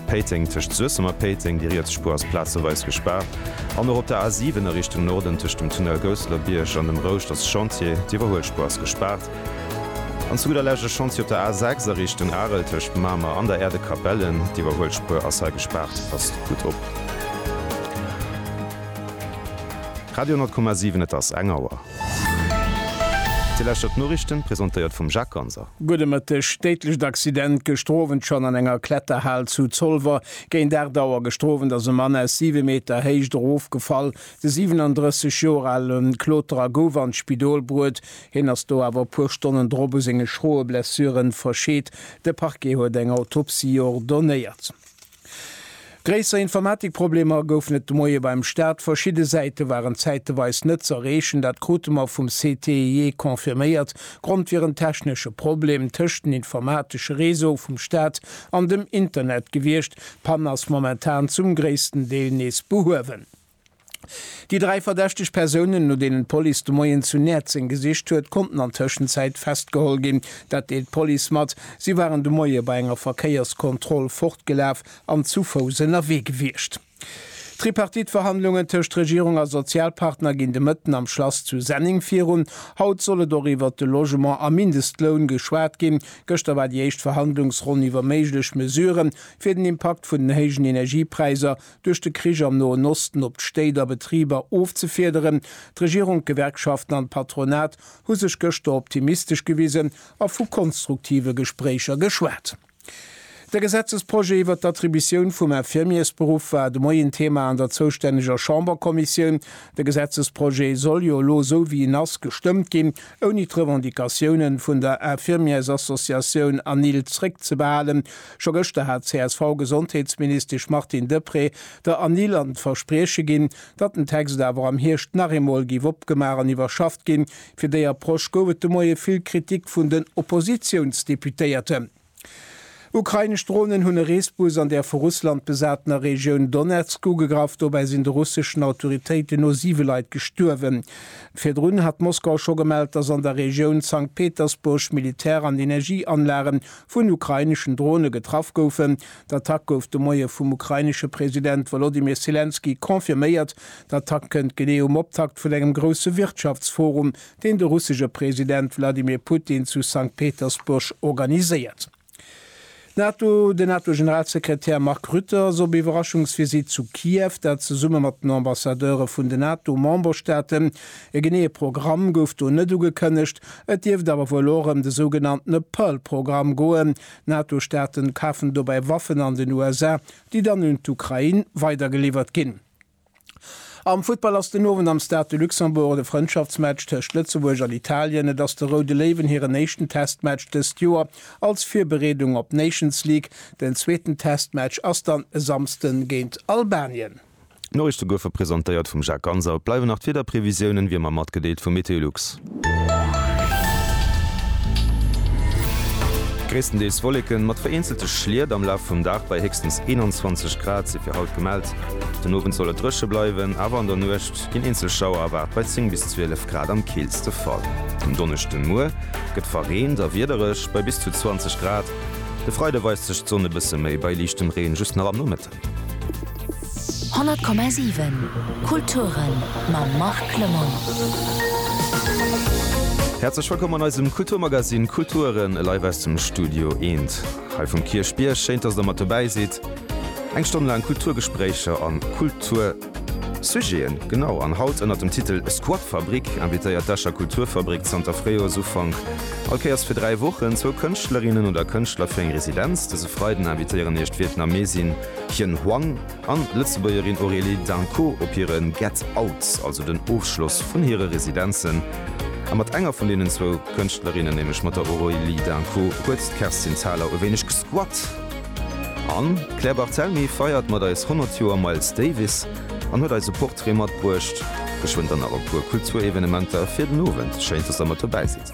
Péiteng, Tëscht Suessem a Péiteng, déi riets Spuer ass plazeweis gespaart, an och op der A7 a Richtung Norden tëscht dem Tunnel Gousselerbiërg an dem Rouscht ass Chantier, d'Iwwerhuelspuer ass gespaart. An zu gudder Lescht e Chantier op der A6 a Richtung Arel tëscht Mamer an der Erdekapellen, d'Iwwerhuelspuer ass hei gespaart. Passt gutt op. Radio 10,7 Et ass eng Auer. Dir lauschtert d'Noriichten, presentéiert vum Jacques Ganser. Gudde Mëtteg, Déidlecht Accident gëschter Owend schonn an enger Kletterhal zu Zolwer. Géint 8 Auer gëschter Owend ass e Mann aus 7 Meter Héicht erofgefall. De 37 Joer ale Kloterer gouf an d'Spidol bruet. Hien ass do awer e puer Stonnen drop u senge schroe Blessure verscheet. De Parquet huet eng Autopsie ordonéiert. Gréisser Informatikproblemer goufen et de Moie beim Start. Verschidde Säite waren zäiteweis net z'erreechen. Dat krute mer vum CTIE confirméiert. Grond wier en technesche Problem tëscht den informatesche Réseaue vum Start an dem Internet gewiescht. D'Pann ass momentan zum gréissten Deel nees behuewen. Déi dräi verdächteg Persounen, no deenen d'Police de Moien zu Näerzeng gesicht huet, konnten an Tëschenzäit festgeholl ginn. Dat deelt d'Police mat. Si waren de Moie bei enger Verkéierskontroll fortgelaf an zu Fouss ënnerwee gewiescht. D'Tripartite-Verhandlungen tëscht Regierung a Sozialpartner ginn de Mëtten am Schlass zu Senneng virun. Haut soll et och iwwert de Logement a Mindestloun geschwat ginn. Gëschter war déi éischt Verhandlungsronn iwwer méiglech Mesurë fir den Impakt vun den héijen Energiepräisser duerch de Krich am Noen Osten op d'Stéit a Betriber ofzefiederen. D'Regierung, d'Gewerkschaften an d'Patronat hu sech gëschter optimistesch gewisen a vu konstruktive Gespréicher geschwat. De Gesetzesprojet iwwert d'Attributioun vum Infirmiersberuff war de Moien Thema an der zoustänneger Chamberkommissioun. De Gesetzesprojet soll jo elo, esou wéi en ass, gestëmmt ginn, ouni d'Revendicatiounen vun der Infirmiersassociatioun ANIL zréckzebehalen. Scho gëschter hat d'CSV-Gesondheetsministesch Martine Deprez der Anil an d'Versprieche ginn, datt den Text awer am Hierscht nach eemol géif opgemaach an iwwerschafft ginn. Fir déi Approche gouf et de Moie vill Kritik vun den Oppositiounsdeputéierten. Ukrainesch Dronen hunn e Reesbus an der vu Russland besatener Regioun Donezk ugegraff. Dobäi sinn de russeschen Autoritéiten no siwe Leit gestuerwen. Virdrun hat Moskau scho gemellt, datt an der Regioun Sankt Petersburg Militär an Energieanlagen vun ukraineschen Drone getraff goufen. D'Attack gouf de Moie vum ukrainesche President Wolodymyr Selenskyj confirméiert. D'Attack kënnt genee um Optakt vun engem grousse Wirtschaftsforum, deen de russesche President Wladimir Putin zu Sankt Petersburg organiséiert. NATO Den NATO-Generalsekretär Mark Rutte ass op Iwwerraschungsvisitt zu Kiew, dat zesumme mat den Ambassadeure vun den NATO-Memberstaaten E geneeë Programm gouf do net ugekënnegt, et dierft awer wuel och ëm de sougenanntene Pearl-Programm goen. D'NATO-Staate kafen dobäi Waffen an den USA, déi dann un d'Ukrain weidergeliwwert ginn. Am Futtball ass den Owend am Stade de Luxembourg de Frëndschaftsmatch tëscht Lëtzebuerg an Italien. Et ass de Roude Léiwen hiren éischten Testmatch dëst Joer als Virbereedung op d'Nations League. Den zweeten Testmatch ass dann e Samsden géint Albanien. D'Noriicht zu Guefe presentéiert vum Jacques Ganser. Et bleiwen nach d'Wiederprevisiounen, wéi ëmmer matgedeelt vu Meteolux. Gréisstendeels Wolleken mat vereenzelte Schliet am Laf vum Dag bei héchstens 21 Grad si fir haut gemellt. Den Owend soll et dréche bleiwen, awer an der Nuecht ginn eenzel Schauer erwaart bei 10 bis 12 Grad am keelste Fall. Um Donneschden Muer gëtt verreent a wiedereg bei bis zu 20 Grad. De Freide weist sech d'Sonn e bësse méi bei liichtem Reen just nach am Nomëttag. 100,7 Kulturen mam Marc Clement. Häerzlech wëllkomm an eisem Kulturmagazin Kulturen live aus dem Studio Eent hei vum Kierchbierg. Schéint, dass der mat dobäi sidd. Eng Stonn laang Kulturgespréicher an Kultur. Sujeten, genau, an haut ënnert dem Titel Squatfabrik invitéiert d'Escher Kulturfabrik zanter Fréijoersufank all Kéiers fir dräi Wochen zwou Kënschtlerinnen oder Kënschtler fir eng Residenz. Dëse Freiden invitéieren iech d'Vietnamesin Hien Hoang an d'Lëtzebuergerin Aurélie Danco op hire Get Out, also den Ofschloss vun hire Residenzen. A mat enger vun deenen zwou Kënschtlerinnen, nämlech mat der Aurélie Danco, huet d'Kerstin Thalau e wéineg gesquat. An d'Claire Barthelmy feiert mat eis 100 Joer Miles Davis an huet eis e Portrait matbruecht. Geschwënn dann nach e puer Kulturevenementer fir den Owend. Schéin, dass der mat dobäi sidd.